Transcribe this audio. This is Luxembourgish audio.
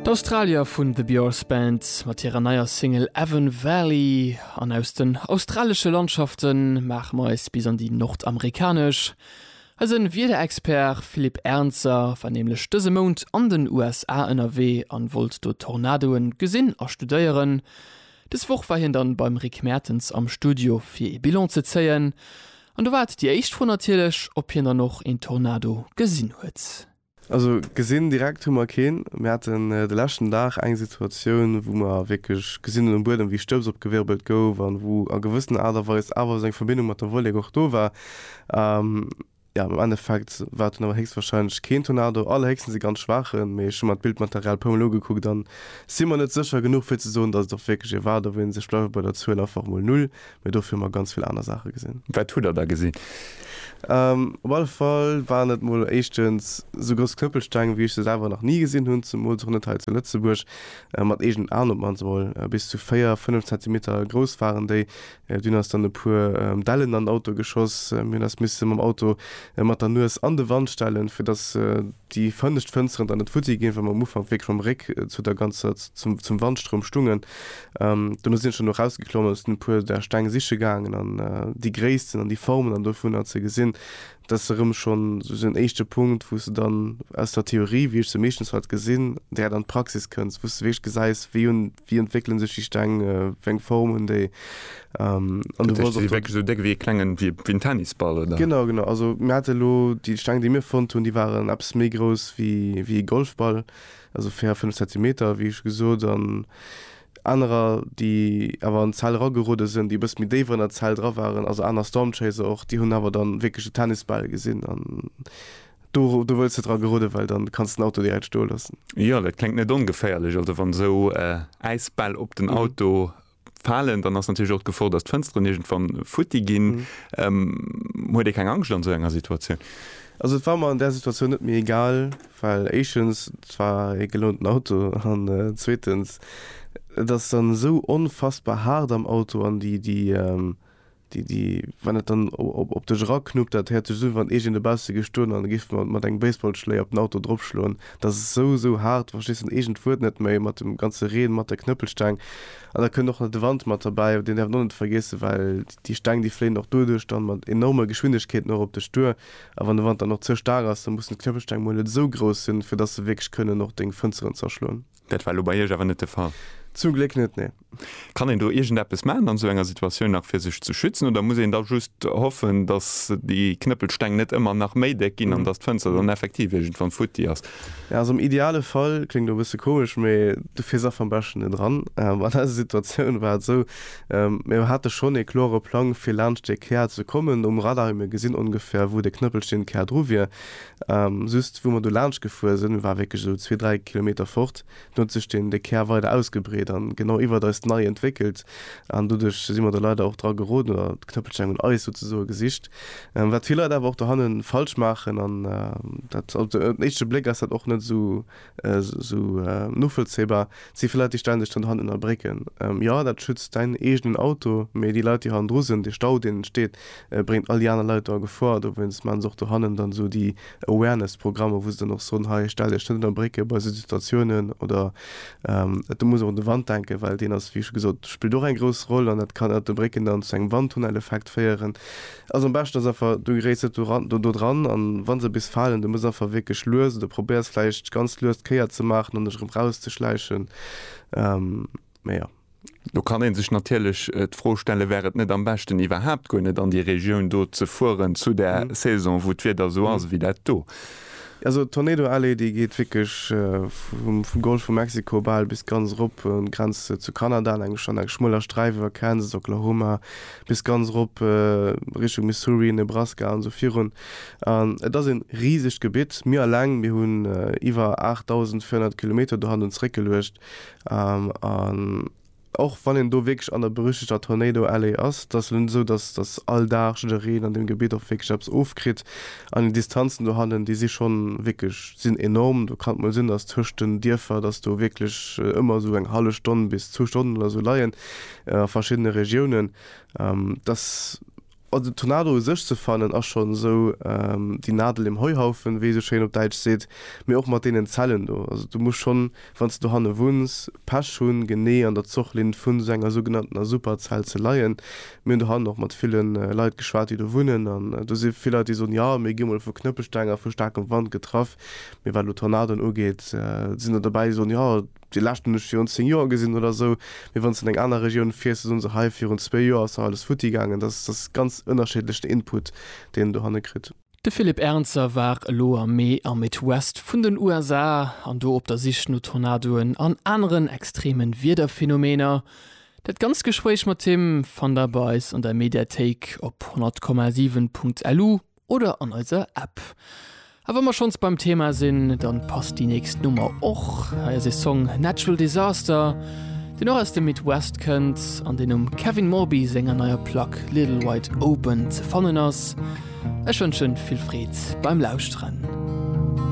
D'Australier vun The Björz Band mat hirer neier Single Avon Valley. An aus den australesche Landschafte maache mer eis bis an déi nordamerikanesch. Eise Wiederexpert Philippe Ernzer war nämlech dëse Mount an den USA ënnerwee an wollt do Tornadoe gesinn a studéieren. Dës Woch war hien dann beim Rick Mertens am Studio fir ee Bilan ze zéien. An do war et déi éischt Fro natierlech, ob hien dann och een Tornado gesinn huet. Also gesinn direkt hu mer keen. Mir haten de leschten Dag eng Situatioun, wou mer wierklech gesinn hunn um Buedem, wéi Stëbs opgewirbelt gouf an wou a gewëssener Aart a Weis awer esou eng Verbindung mat der Wollek och do war. Jo, am Endeffekt war et dunn awer héchstwarscheinlech keen Tornado, allerhéchstens e ganz schwaachen. Mee ech hu mer d'Bildmaterial e puermol ugekuckt a si mer net sécher genuch, fir ze soen, datt et och wierklech ee war. Do wéilt ee sech bleiwe bei der Zuel einfach emol Null, mee dofir hu mer ganz vill aner Saache gesinn. Wat hutt Der da gesinn? Op alle Fall waren et mol éischtens esou grouss Knëppelsteng, wéi ech se selwer nach ni gesinn hunn, zemools och net hei zu Lëtzebuerg. Mat eegenen Aen op d'mannst emol. Bis zu véier, fënnef Zentimeter grouss waren déi. Dunn ass dann e puer Dellen an den Auto geschoss. Mir hunn eis misse mam Auto mat der Nues an de Wand stellen, fir dass déi fënnescht Fënsteren dann net futti ginn, well mer am Ufank wierklech mam Réck zu der ganzer, zum Wandstroum stungen. Um dono sin ech dann erausgeklommen an sin e puer där Steng siche gaangen an déi Gréissten an déi Formen an dovunner ze gesin. Dat ass erëm schon sou en éischte Punkt wous de dann aus der Theorie, wéi ech se meeschtens halt gesin, direkt an d'Praxis kënns, wous de wierklech gesäis wéi hun, wéi entwéckelen sech déi Steng, wéi eng Form hun déi an du brauchs och. Si si wierklech sou déck wéi e klengen, wéi en Tennisball oder? Genau, genau. Also mir hate lo déi Steng déi mir fonnt hun, déi waren eppes méi grouss wéi e Golfball. also 4, 5 Zentimeter, wéi scho gesot, an anerer, déi awer an d'Zell eragerude sinn, déi e bësse méi déif an der Zell dra waren, also aner Stormchaser och, déi hunn awer da wierklech de Tennisbal gesinn an do wëlls de dra gerudden, well dann kanns de den Auto direkt stoe loossen. Jo, dat kléngt net ongeféierlech, also wann esou Äisbäll op den Auto falen, dann ass natierlech och d'Gefor, datt d'Fënsteren iergendwann futti ginn. Huet ee keng Angscht an esou enger Situatioun? Also et war mer an där Situatioun net méi egal, well éischtens, et war ee gelounten Auto an zweetens, et ass dann esou onfassbar haart am Auto an déi Déi, déi, wann et dann op dech eraknuppt, dat héiert sech esou un, wann iergend e bausse géif stoen an e géif mat engem Baseballschléi op den Auto dropschloen. Et ass esou, esou haart, du verstees dann iergend d'Wuert net méi, mat dem ganze Reen, mat der Knëppelsteng. An da kënnt och nach de Wand mat derbäi, deen däerf een och net vergiessen, well déi Steng, déi fléien och doduerch dann mat enorme Geschwindegkeeten och op dech duer. A wann de Wand dann och ze staark ass, da mussen d'Knëppelsteng mol net esou grouss sinn, fir dass se wierklech kënnen och deng Fënsteren zerschloen. Dat war elo bei Iech awer net de Fall? Zum Gléck net, nee. Kann een do iergendeppes maachen an esou enger Situatioun nach fir sech ze schützen oder muss een da just hoffen, datt déi Knëppelsteng net ëmmer nach méi déck ginn an datt d'Fënster dann effektiv iergendwann futti ass? Ja, also am ideale Fall, kléngt elo e bësse komesch, mee du fiers einfach am beschten net eran. An eiser Situatioun war et esou, mir hate schonn ee klore Plang fir laanscht dee Kär ze kommen um Radar, mir gesinn ongefähr wou de Knëppelsteng Kär dru wier, Just wou mer do laanscht gefuer sinn, war wierklech esou zwee, dräi Kilometer fort, do huet sech den de Kär weider ausgebreet an genau iwwert eis nei entwéckelt an doduerch si mer do leider och dra geroden oder d'Knëppelsteng un eis souzesoe gesicht, wat vill Leit awer och dohannen falsch maachen an dat op den éischte Bléck ass dat och net esou Esou novollzéibar si fir Leit, déi stänneg dann hannen a brécken. Jo, dat schützt däin eegenen Auto, mee déi Leit, déi hannendru sinn, dee Stau, deen entsteet, bréngt all déi aner Leit do a Gefor. Dowéinst maachen se och do hannen dann esou déi Awareness-Programmer, wou se dann och soen, hei, stell Iech net ënner Brécke bei esou Situatiounen. Oder et muss och un de Wand denken, well deen ass, wéi scho gesot, spillt och eng grouss Roll. An dat kann ënnert de Brécken dann zu engem Wandtunneleffekt féieren. Also am beschten ass einfach du geréiss net doran dodran an wann se bis falen du muss einfach wierklech lues oder probéiers vläicht ganz lues d'Kéier ze maachen an dech erëm raus ze schläichen mee jo. Do kann een sech natierlech d'Fro stellen, wär et net am beschten iwwerhaapt guer net an déi Regioun do ze fueren zu der Saison wou d'Wieder esou ass ewéi dat do? Also d'Tornado Alley déi geet wierklech vum Golf vu Mexiko bal bis ganz erop un d'Grenz zu Kanada an eng an eng schmueler Sträif iwwer Kansas, Oklahoma bis ganz erop Richtung Missouri, Nebraska an sou virun. An et ass een risegt Gebitt. Mir alleng mir hunn iwwer 8.400 Kilometer do hanne zeréckgeluecht an Och wann een do wierklech an der berüchtegter Tornado Alley ass, da ass et net esou, datt datt all Dag jiddereen an deem Gebitt och wierklech eppes ofkritt. An déi Distanzen dohannen, déi si schonn wierklech, sinn enorm. Do kann et mol sinn, datt tëscht den Dierfer, datt do wierklech ëmmer esou eng hallef Stonn bis zwou Stonnen oder esou leien a verschiddene Regiounen. Datt. An den Tornado u sech ze fannen ass schonn esou déi Nadel im Heuhaufen, wéi ee sou schéin op Däitsch seet, mee och mat deenen Zellen do. Also du muss schonn, wann s de dohanne wunns, Pech hunn, genee an der Zochlinn vun esou enger sougenanntener Superzell ze leien. Mir hunn dohannen och mat ville Leit geschwat, déi do wunnen, an do si vill Leit, déi soen, jo, mir gi mol vu Knëppelsteng a vu staarkem Wand getraff, mee wat elo Tornadoen ugeet, sinn der dobäi, déi soen, jo, Déi lescht hunn ech virun 10 Joer gesinn oder esou. Mee wann s de an eng aner Regioun fiers, da soen se, hei virun zwee Joer ass nach alles futti gaangen. Dat ass ganz ënnerschiddlech den Input, deen en dohanne kritt. De Philippe Ernzer war elo am Mee am Midwest vun den USA an do op der Sich no Tornadoen an aneren extreme Wiederphenomener. Dat ganzt Gespréich mat him fannt der bei eis an der Mediathéik op 100,7.lu oder an eiser App. A wa mer schonns beim Thema sinn, dann passt déi nächst Nummer och. Hei ass e Song Natural Disaster, deen och aus dem Midwest kënnt an deen um Kevin Morby senger neier Plack Little Wide Open ze fannen ass. Ech wënschen vill Freed beim Lauschteren.